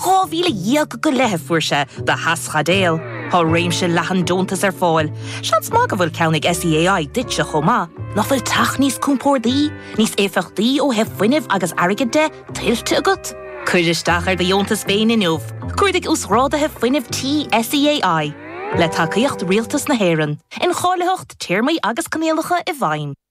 Dhá mhíle dhéag go leith a fuair sé do theaschaidéil. Tá réimse leathan deontas ar fáil. Seans maith go bhfuil ceann ag SEAI duitse chomh maith. Nach bhfuil teach níos compórdaí, níos éifeachtaí ó thaobh fuinnimh agus airgid de, tuillte agat? Cuir isteach ar do dheontas féin inniu. Cuardaigh Uasghrádaithe Fuinnimh Tí SEAI. Le tacaíocht Rialtas na hÉireann. Incháilitheacht, téarmaí agus coinníollacha i bhfeidhm.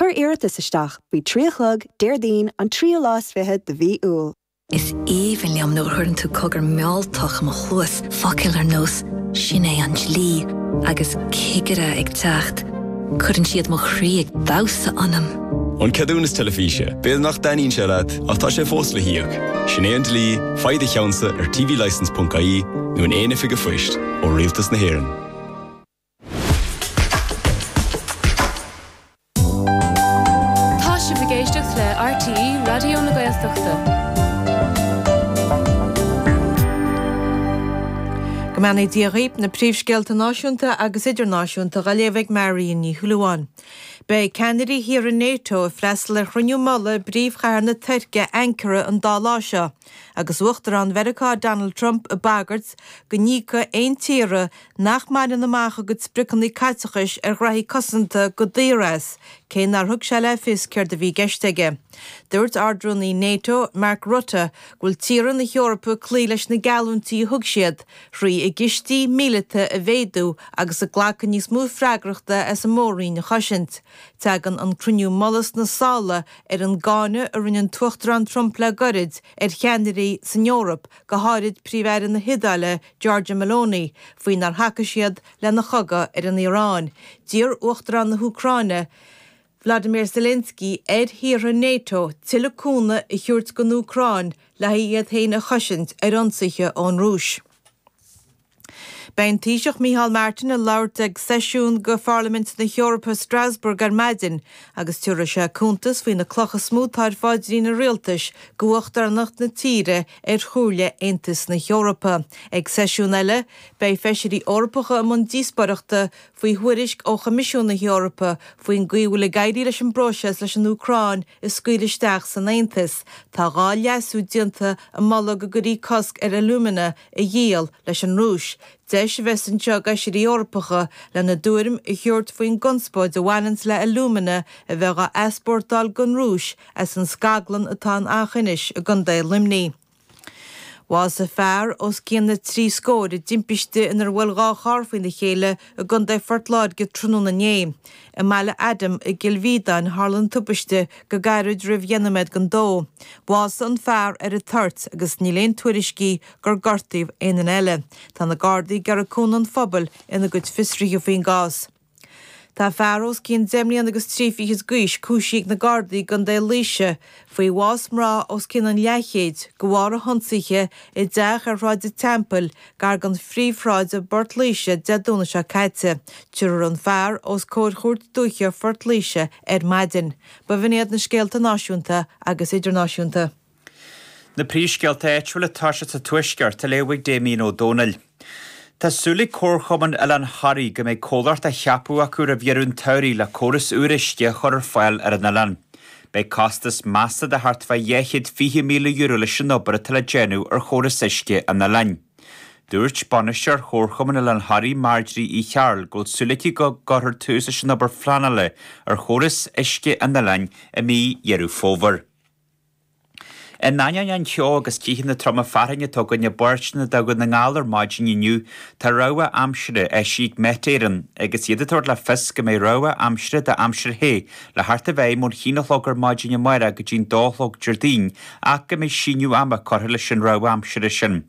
Cuir iarratas isteach faoi trí a chlog Déardaoin an tríú lá is fiche de mhí Iúil. Is aoibhinn liom nuair a chuireann tú cogar mealltach i mo chluas, focail ar nós 'Sin é an dlí' agus 'Cigire ag teacht'. Cuireann siad mo chroí ag damhsa ionam. An Ceadúnas Teilifíse, B'fhéidir nach dtaitníonn sé leat, ach tá sé fós le híoc. Sin é an dlí, faigh do cheannsa ar tvlicense.ie nó in aon oifig a' phoist ó Rialtas na hÉireann. Tá sibh ag éisteacht le RTÉ Raidió na Gaeltachta. Go mbeannaí Dia dhaoib, na príomhscéalta náisiúnta agus idirnáisiúnta dha léamh ag Marion Ní Shúilleabháin. Beidh ceannairí thíortha Nato ag freastal ar chruinniú mullaigh i bpríomhchathair na Tuirce, Ankara, an dá lá seo. agus Uachtarán Mheiriceá Donald Trump ag bagairt go n-íocfaidh aon tír nach mbaineann amach a gcuid spriocanna caiteachais ar ghraithí cosanta go daor as, cé nár thug sé le fios céard a bhí i gceist aige. Dúirt Ard-Rúnaí Nato, Mark Rutte, go bhfuil tíortha na hEorpa ag cloí leis na geallúintí a thug siad, thrí a gcistí míleata a mhéadú agus ag glacadh níos mó freagrachta as an mór-roinn a chosaint. Teagann an cruinniú mullaigh sna sála ar an gcáineadh a rinne an tUachtarán Trump le goirid ar cheannairí san Eoraip, go háirid Príomh-Aire na hIodáile Giorgia Meloni, faoi nár thacaigh siad lena chogadh ar an Iaráin. D'iarr Uachtarán na hÚcráine Vladimir Zelensky ar thíortha NATO tuilleadh cúnamh a thabhairt don Úcráin le haghaidh iad féin a chosaint ar ionsaithe ón Rúis. Beidh an Taoiseach Micheál Martin ag labhairt ag seisiún de Pharlaimint na hEorpa i Strasbourg ar maidin agus tiubharfaidh sé cuntas faoi na clocha is mó tá ar pháidrín an Rialtais d'uachtaránacht na tíre ar Chomhairle Aontais na hEorpa. Ag seisiún eile beidh Feisirí Eorpacha i mbun díospóireachta faoi thuairisc ó Choimisiún na hEorpa faoin gcaoi a bhfuil ag éirí leis an bpróiseas leis an Úcráin, a scaoileadh isteach san Aontas. Tá dhá leasú déanta ag moladh go gcuirfí cosc ar alumina a dhíol leis an Rúis. Deis a bheas anseo ag Feisirí Eorpacha lena dtuairim a thabhairt faoin gconspóid a bhaineanns le alumina a bheith dhá easpórtáil gon Rúis as an scaglann atá in Eachinis i gContae Luimnigh. Bhásaigh fear os cionn na trí scór i dtimpiste inar bhuail dhá charr faoina chéile i gContae Phort Láirge tráthnóna inné. I mBaile Adaim i gCill Mhíodáin a tharla an tubaiste go gairid roimh dheich nóiméad don 2. Bhásaigh an fear ar an toirt agus níl aon tuairiscí gur gortaíodh aon duine eile. Tá na Gardaí ag iarraidh cúnamh an phobail ina gcuid fiosruithe faoin gcás. Tá fear os cionn deich mbliana agus trí fichid d'aois cúisithe ag na Gardaí i gContae Laoise faoi bhás mná os cionn an leathchéid de bharr a hionsaithe i dteach ar Shráid an Teampaill gar don phríomhshráid i bPort Laoise Dé Domhnaigh seo caite. Tabharfar an fear os comhair Chúirt Dúiche Phort Laoise ar maidin. B'in iad na scéalta náisiúnta agus idirnáisiúnta. Na príomhscéalta áitiúla ag tosú sa Tuaisceart á léamh ag Damien Ó Dónaill. Tá súil ag Comharchumann Oileán Thoraí go mbeidh comhlacht á cheapadh acu roimh dheireadh an tsamhraidh le córas úr uisce a chur ar fáil ar an oileán. Beidh costas measta de thart fá €220,000 leis an obair atá le déanamh ar chóras uisce an oileáin. Dúirt bainisteoir Chomharchumann Oileán Thoraí Marjorie Uí Chearbhaill go bhfuil súil aici go gcuirfear tús leis an obair phleanála ar chóras uisce an oileáin i mí Dheireadh Fómhair. In ainneoin an cheo agus ceathanna troma fearthainne atá againn i bpáirteanna de Dhún na nGall ar maidin inniu tá rabhadh aimsire eisithe ag Met Éireann agus iad ag tabhairt le fios go mbeidh rabhadh aimsire d'aimsir the le theacht i bhfeidhm ón haon a chlog ar maidin amáireach go dtí'n dó a chlog Déardaoin ach go mbeidh síneadh ama curtha leis an rabhadh aimsire sin.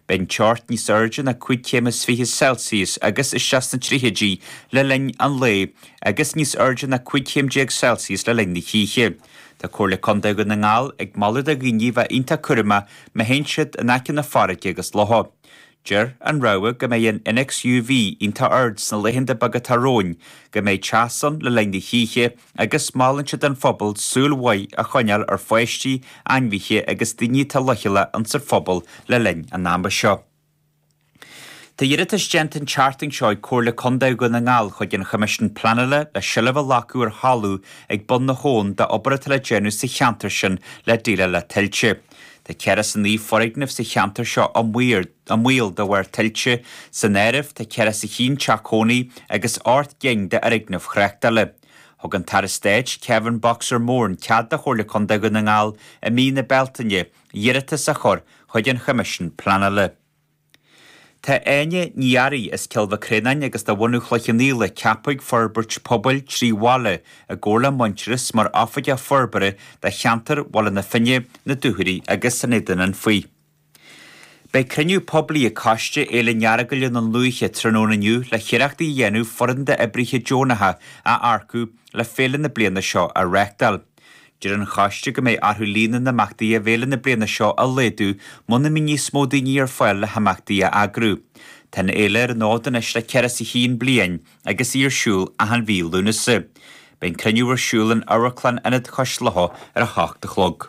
Beidh an teocht níos airde ná cúig chéim is fiche Celsius agus isteach sna tríochaidí le linn an lae agus níos airde ná cúig chéim déag Celsius le linn na hoíche. Tá Comhairle Contae Dhún na nGall ag moladh do dhaoine bheith iontach cúramach má théann siad in aice na farraige agus locha. Deir an rabhadh go mbeidh an innéacs UV iontach ard sna laethanta beaga atá romhainn, go mbeidh teas ann le linn na hoíche agus molann siad don phobal súil mhaith a choinneáil ar pháistí, ainmhithe agus daoine atá leochaileach insan phobal le linn an ama seo. Tá iarratas déanta an tseachtain seo ag Comhairle Contae Dhún na nGall chuig an Choimisiún Pleanála le seilbh a ghlacadh ar thalamh ag Bun na hAbhann d'obair atá le déanamh sa cheantar sin le déileáil le tuilte. Tá ceathracha is a naoi foirgneamh sa cheantar seo i mbaol de bharr tuilte, san áireamh tá ceathracha is a haon teach cónaí agus ocht gcinn d'fhoirgnimh thráchtála. Thug an tAire Stáit, Kevin Boxer Moran cead do Chomhairle Contae Dhún na nGall i mí na Bealtaine, iarratas a chur chuig an Choimisiún Pleanála. Tá Áine Ní Fhearraigh as Cill Mhic Réanáin agus de bhunadh Chloich Chionnaola ceaptha ag Forbairt Pobail trí bhaile i gcomhar le Muintearas mar Oifigeach Forbartha do cheantar Bhaile na Finne, na Dúchoraidh agus an Éadain Anfaigh. Beidh cruinniú poiblí ag Coiste Fhéile an Earagail i nDún Lúiche tráthnóna inniu le hiarrachtaí a dhéanamh foireann d'oibrithe deonacha a earcú le féile na bliana seo a reachtáil. Deir an Choiste go mbeidh orthu líon na n-imeachtaí i bhféile na bliana seo a laghdú muna mbíonn níos mó daoine ar fáil le himeachtaí a eagrú. Tá an fhéile ar an fhód anois le fiche is a haon bliain agus í ar siúl achan mhí Lúnasa. Beidh an cruinniú ar siúl in Amharclann Ionad Chois Locha ar a hocht a chlog.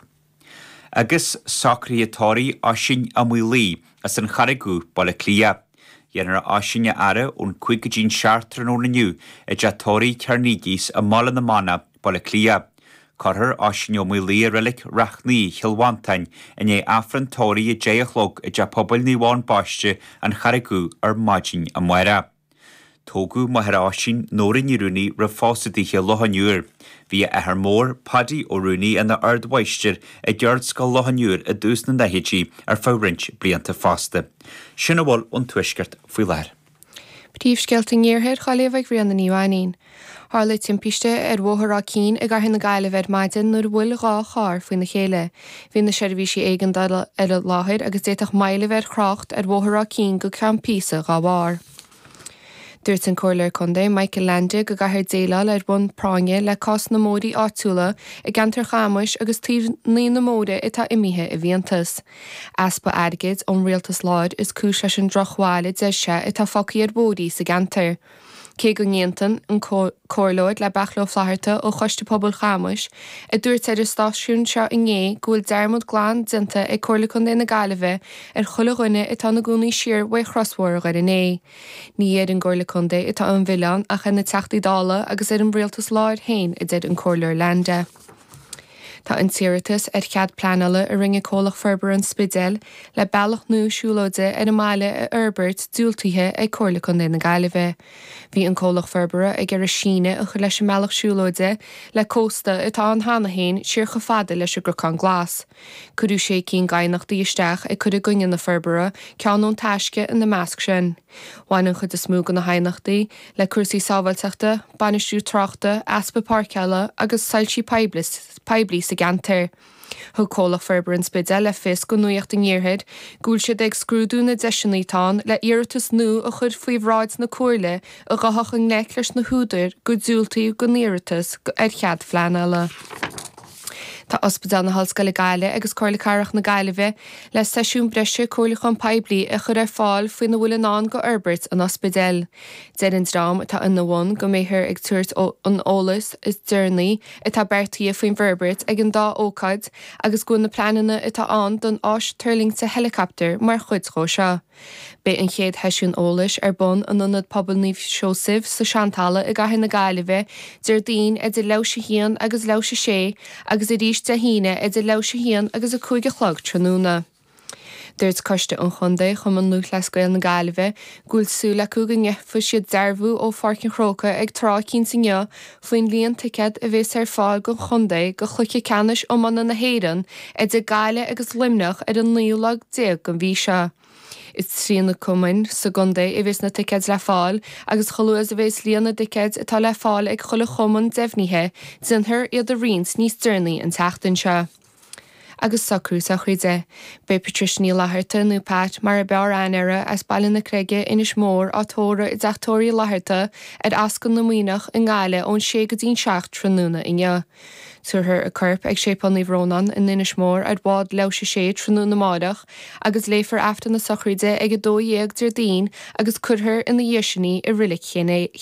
Agus socruithe tórraimh, Oisín Ó Maolaodha, as an Charraig Dhubh, Baile Átha Cliath. Déanfar Oisín a fhaire ón cúig go dtí an seacht tráthnóna inniu i dteach toraidh Chernegies i mBaile na Manach, Baile Átha Cliath. Cuirfear Oisín Ó Maolaodha i reilic Ráth Naoi, Cill Mhantáin, i ndiaidh Aifreann tórraimh a deich a chlog i dTeach Pobail Naomh Eoin Baiste, An Charraig Dhubh ar maidin amárach. Tógadh máthair Oisín, Nóra Ní Rúnaí roimh phósadh daoithe i Loch an Iúir. Bhí a athair mór, Paidí Ó Rúnaí ina ardmháistir i gCeardscoil Loch an Iúir i dtús na n-ochtóidí ar feadh roinnt blianta fosta. Sin a bhfuil ón Tuaisceart faoi láthair. Príomhscéalta an Iarthair ó Ghaillimh ag Ríona Ní Mhainín. Tharla timpiste ar Bhóthar Áth Cinn i gCathair na Gaillimhe ar maidin nuair a bhuail dhá charr faoina chéile. Bhí na seirbhísí éigeandála ar an láthair agus d'fhéadfadh moill bheith ar thrácht ar Bhóthar Áth Cinn go ceann píosa dá bharr. Dúirt an Comhairleoir Contae Michael Leainde go gcaithfear déileáil ar bhonn práinne le cás na mbóithrí áitiúla i gceantar Chamuis agus Tír an Fhia, bóithrí atá imithe i bhfiántas. Easpa airgid ón rialtas láir is cúis leis an drochbhail a deir sé atá fágtha ar bhóithrí sa gceantar. Cé go n-aontaionn an Comhairleoir le Beairtle Ó Flatharta ó Choiste Pobail Chamuis a dúirt ar an stáisiún seo inné go bhfuil dearmad glan déanta ag Comhairle Contae na Gaillimhe ar chuile dhuine atá ina gcónaí siar uaidh chrosbhóthar Dhoire Né ní har an gComhairle Contae atá an milleán ach ar na Teachtaí Dála agus ar an rialtas láir féin a deir an Comhairleoir Leainde. Tá an t-iarratas ar chead pleanála a rinne Comhlacht Forbartha an Spidéil le bealach nua siúlóide ar an mbaile a fhorbairt diúltaithe ag Comhairle Contae na Gaillimhe. Bhí an Comhlacht Forbartha ag iarraidh síneadh a chur leis an mbealach siúlóide le cósta atá ann cheana féin siar chomh fada leis an gCnocán Glas. Cuireadh sé cinn d'aighneachtaí isteach ag cur i gcoinne na forbartha, ceann ón Taisce ina measc sin. Bhain an chuid is mó de na haighneachtaí le cúrsaí sábháilteachta, bainistiú tráchta, easpa páirceála agus soilsí poiblí sa gceantar. Thug Comhlacht Forbartha an Spidéil le fios do Nuacht an Iarthair go bhfuil siad ag scrúdú na deiseanna atá ann le hiarratas nua a chur faoi bhráid na Comhairle a ghabhfadh i ngleic leis na húdair gur diúltaíodh don iarratas ar chead pleanála. Tá Ospidéal na hOllscoile Gaillimh agus Comhairle Cathrach na Gaillimhe le seisiúin bhreise comhairliúcháin phoiblí a chur ar fáil faoina bhfuil i ndán go fhorbairt an ospidéil. Deir an dream atá ina bhun go mbeifear ag tabhairt an eolais is deireanaí atá beartaithe faoin bhforbairt ag an dá ócáid agus go bhfuil na pleananna atá ann don áis tuirlingte heileacaptair mar chuid dhó seo. Beidh an chéad sheisiún eolais ar bun in Ionad Pobail Naomh Seosaimh sa tSeantalamh i gCathair na Gaillimhe Déardaoin idir leathuair tar éis a haon agus leathuair tar éis a sé agus arís Dé hAoine idir leathuair tar éis a haon agus a cúig a chlog tráthnóna. Dúirt Coiste an Chontae Chumann Lúthchleas Gael na Gaillimhe go bhfuil súil acu go ngeobhaidh siad dearbhú ó Pháirc an Chrócaigh ag tráth eicínt inniu faoin líon ticéad a bhéas ar fáil gon chontae go Chluiche Ceannais Iomána na hÉireann idir Gaillimh agus Luimneach ar an naoú lá déag den mhí seo. Is trí na cumainn sa gcontae a bhéas na ticéad le fáil agus chomh luath is a bhéas líon na dticéad atá le fáil ag chuile chumann deimhnithe déanfar iad a roinnt níos deireanaí an tseachtain seo. agus socrú sochraide. Beidh Patricia Ní Fhlatharta, nó Pat mar a b'fhearr aithne uirthi, as Baile na Creige, Inis Mór, á tórramh i dTeach Tórraimh Fhlatharta ar Ascaill na Muimhneach i nGaillimh ón sé go dtí'n seacht tráthnóna inniu. Tabharfar a corp ag Séipéal Naomh Rónán i nInis Mór ar bhád leathuair tar éis a sé tráthnóna amáireach agus léifear Aifreann na Sochraide ag 12 Déardaoin agus cuirfear ina dhiaidh sin í i Reilig Ché